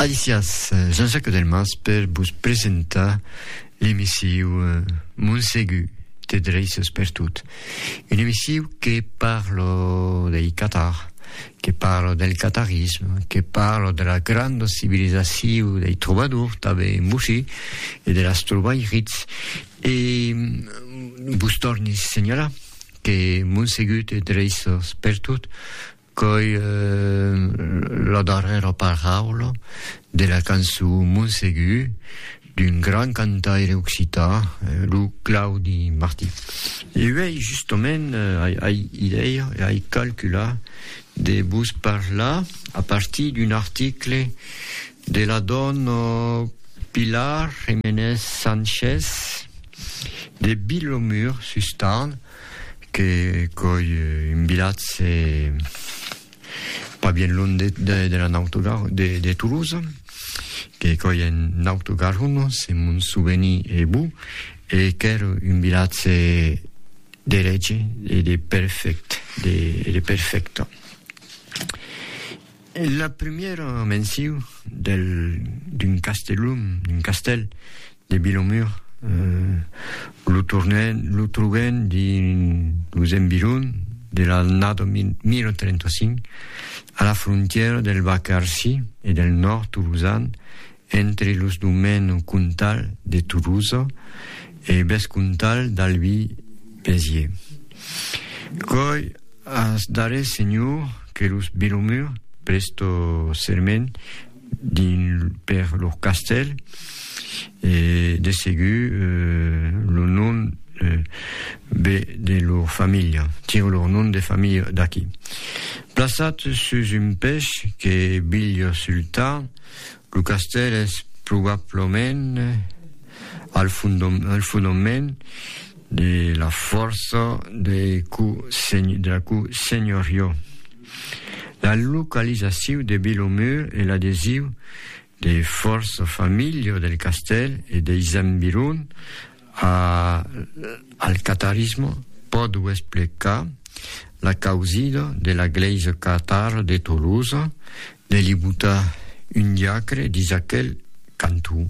Alicias, Jean-Jacques Delmas per vos presentar l'emissiu Montsegur te dreisses per tot. Une emissiu que parlo dei Qatar, que parlo del qatarisme, que parlo de la granda civilisaciu dei trobadors tanben en Bouchy e de las trobairits e vos torni signalar que Montsegur te dreisses per tot Qu'òi la darrèra paraula de la cançon Mon Segur d'un grand cantaire occità, lo Claudi Martí. E uèi justament ai idèia e ai calculat de vos parlar a partir d'un article de la dòna Pilar Jiménez Sánchez de Vilomur sus Tarn, Que coi un vilatge pas bien loin de, de, de la Nautogar, de, de Toulouse, que coi en Nautogaron, se mon souveni e bon, e qu'ère un vilatge de lege e de perfect, de, de perfecta. La primièra menciu del d'un castelum, d'un castèl, de Vilomur, lo tornen, lo trobem dins los environs de l'annada 1035, a la frontièra del Vacarsi e del nòrd tolosan Entre los domèns comtal de Tolosa e vescomtal d'Albi Béziers. Coi ath darrèr senhor que los Belomur prestò serment dins per lor castèl, e de segur lo nom ve de lor familha, tiro lor nom de familha d'aqui. Plaçat sus un pech que Bilh Sultan, Lo castèl es probablament al fondament de la fòrça de la co-senhorió. La localizaciu de Vilomur e l'adesiu de fòrça familha del castèl e deis environs A al catarisme pòdo explicar la causida de la glèisa catara de Tolosa de li botar un diacre dins aquel canton.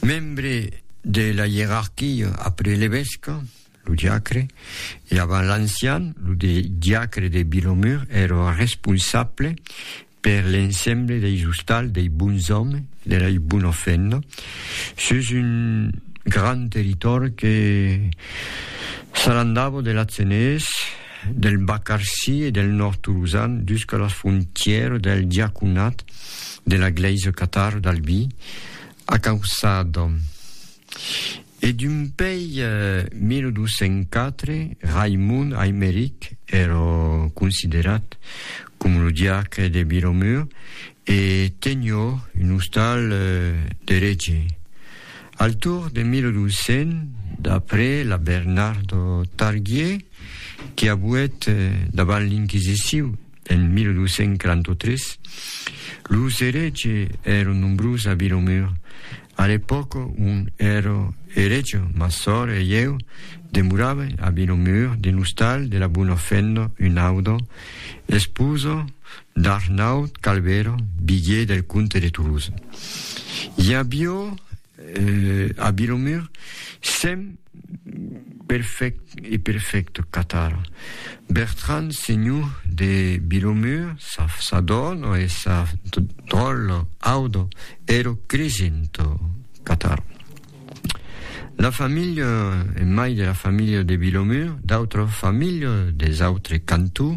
Membre de la ierarquia après l'evesca, lo diacre, e avant l'ancian, lo diacre de Vilomur, èra responsable per l'ensemble deis ostals, dei bons òmes, de lei bona feina, sus un gran territòri que s'alandava de l'Atzenés, del Bacarcí e del Nòrd Tolosan jusca las frontièras del diaconat de la Glèisa Catar d'Albi, a Cauçada. E dumpèi 1204, Raimond Aimeric èrò considerat com lo diacre de Biromur e tenió un ostal d'eretge. Al torn de 1200, d'après la Bernardo Targier, que abuèt davant l'inquisiciu en 1243, los eretges èron nombrós a Biromur, A l'epòca on èra eretge, ma sòr e ieu demoràvem a Vinomur, dins l'ostal de la Bona Fenda, un auda, esposa d'Arnaut Calvera, bigier del comte de Toulouse. I avió a Vinomur cent Perfect e perfect Catar. Bertrand senhor de Vilomur sa sa dòna e sa dròlla auda ero cresent Catar. La familha e mai de la familha de Vilomur d'autra familha des autres cantons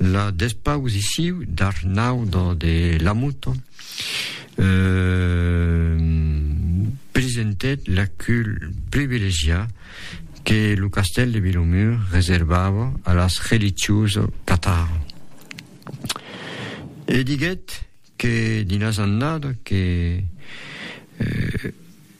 La despausissiu d'Arnau do de Lamoto presentèt l'acul privilegiat que lo castèl de Vilomur reservava a las religiosa catar e diguèt que dins las annadas que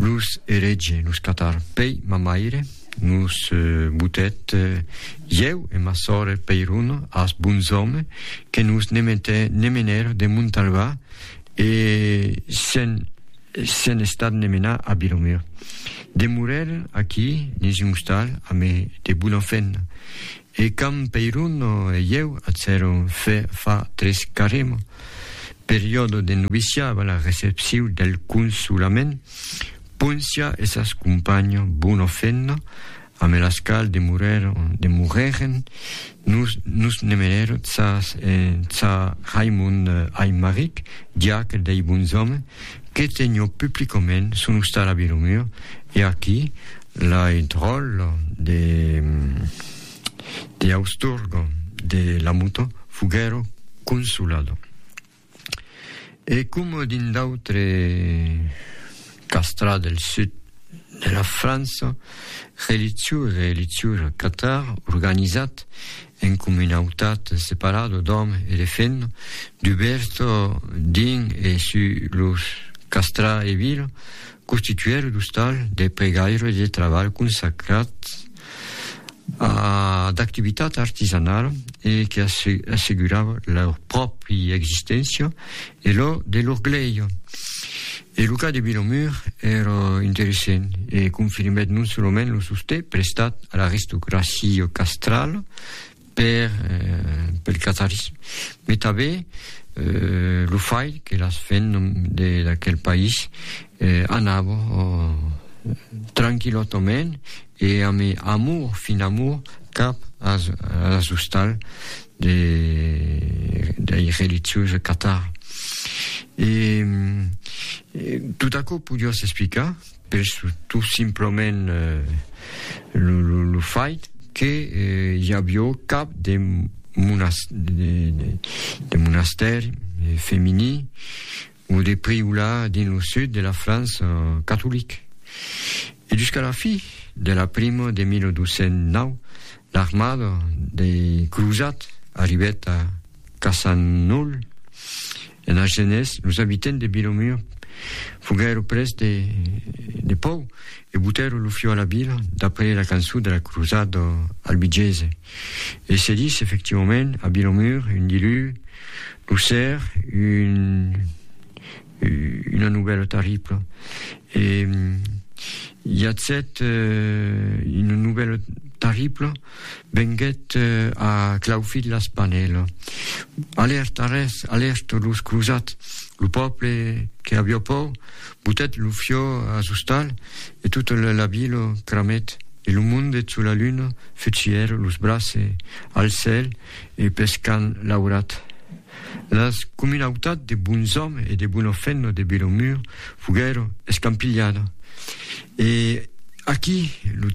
Los eretge los catar pei ma maire, nos botèt ieu e ma sòre Peiron as bons òme que nos ne metè ne menèr de Montalvà e se'n se'n estat ne menar a Biromir. Demorèren aquí nes un ostal ame de bona fèna. E quand Peiruno e ieu atzèron fe fa tres caremo, periòdo de noviciat avant la recepciu del Consolament, Poncia e sas companho Buno Fenno, ame las qual demorèren, nos nos nemenèron tsa Raimond Aimaric, diac dei bons òmes, Que tenho publicament son ostal a Vilomur e aquí la eth ròl de de Austurgo de la moto foguèro consolado. E coma dins d'autre castra del sud de la França, relitjor e relitjora catar organizat En comunautat separada d'òme e de femna, dubèrta dins e sus los castrar e vila, constituèra d'ostal, de pregaire e de trabalh consacrat a d'activitat artisanala e que assegurava lor pròpri existéncia E lo de Lorglèia e lo cas de Vilomur èra interessent e confirmèt non solament lo sostè prestat a l'aristocracia castrala per pel catarisme, mai tanben lo fait que las femnas de d'aquel país anava tranquillotament e amb amor, fin amor, cap as as ostals de dei religiosi de Qatar e tot aquò podiá s'explicar per tot simplement lo fait que i avió cap de monastèri femení o de Priola dins lo sud de la França catolic. E jusqu'a la fi de la prima de 1209, l'armada dei crosats arribèt a Cassanul, en Argenés, los abitents de Vilomur foguèron pres de de pòur e botèron lo fiu a la vila, d'après la cançon de la crosada albigesa. E se dis efectivament a Vilomur un dilu lo ser un una nouvèla terribla e i a set una nouvèla terribla venguèt a claufit la spanèla alèrta res alèrta los crosats lo pòble que aviá paur Butèt lo fiò as ostal e tot la vila cramèt e lo monde çò la luna fut sièr los brace al cèl e pes qu'an laurat las comunautat de bons òm e de bona fenna de Vilomur foguèro escampilhada E aquí lo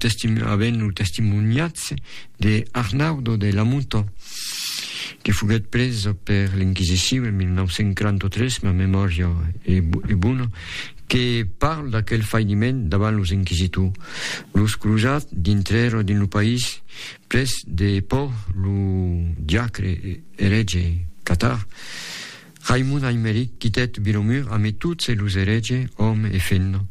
avèm lo testimoniatz de Arnaudo de Lamuto, que foguèt pres per l'Inquisicion en 1943, ma memòria e bona, que parle d'aquel fainiment davant los inquisitors. Los crosats dintrèron dins lo país pres de pòur lo diacre erège catar, Raimon Aimeric quitèt Vilomur ame tot se los erege, òme e femna,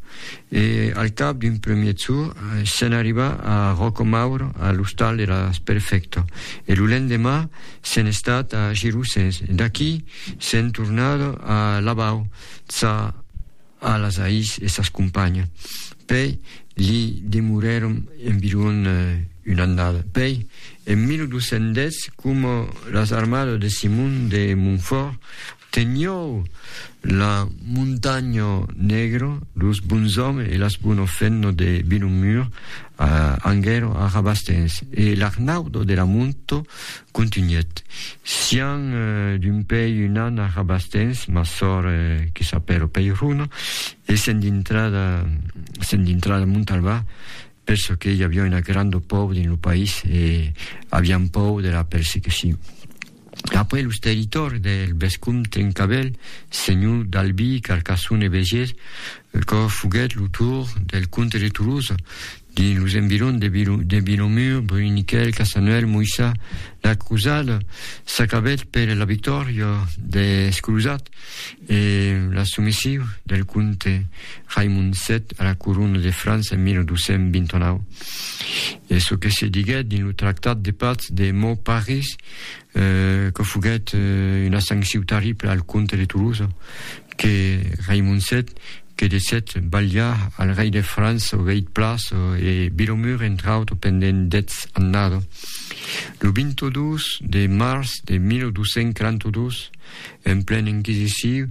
e al cap d'un premier tour, se'n arriba a Ròcomaur a l'ostal de la Sperfecta, e lo lendemà se'n estat a Girosses, e d'aquí se'n tornada a Labau, ça. A las Ais e sas companhas. Pei li demorèron environ una annada. Pei, en 1210, coma las armadas de Simon de Montfòrt teniou la Montanha Negra, los bons òmes e las bonas fennas de Vilomur anguèron a Rabastens e l'Arnaudo de la Monto Contunhèt, Sián d'un pei un an a Rabastens, ma sòr que s'apèla Peirona, e sèn dintrada, sèn dintrada Montalbà, per çò que i aviá una granda pòur dins lo país e avián pòur de la persecucion. Après los territòris del vescomte Trencavèl, senhor d'Albi, Carcassona e Begés, quò foguèt lo tour del comte de Tolosa, Dins los environs de Vilomur, Bruniquèl, Casanuèl, Moissa, la crosada s'acabèt per la victòria dels crosats e la somesion del comte Raimond VII a la corona de França en 1229. E çò que se diguèt dins lo tractat de patz de Mauparis que foguèt una sanciu tarribla al comte de Tolosa, que Raimon vii que desèt balhar al rei de França o veit Plas e Vilomur entre autres pendent dètz annada. Lo 22 de març de 1242, en plen inquisiciu,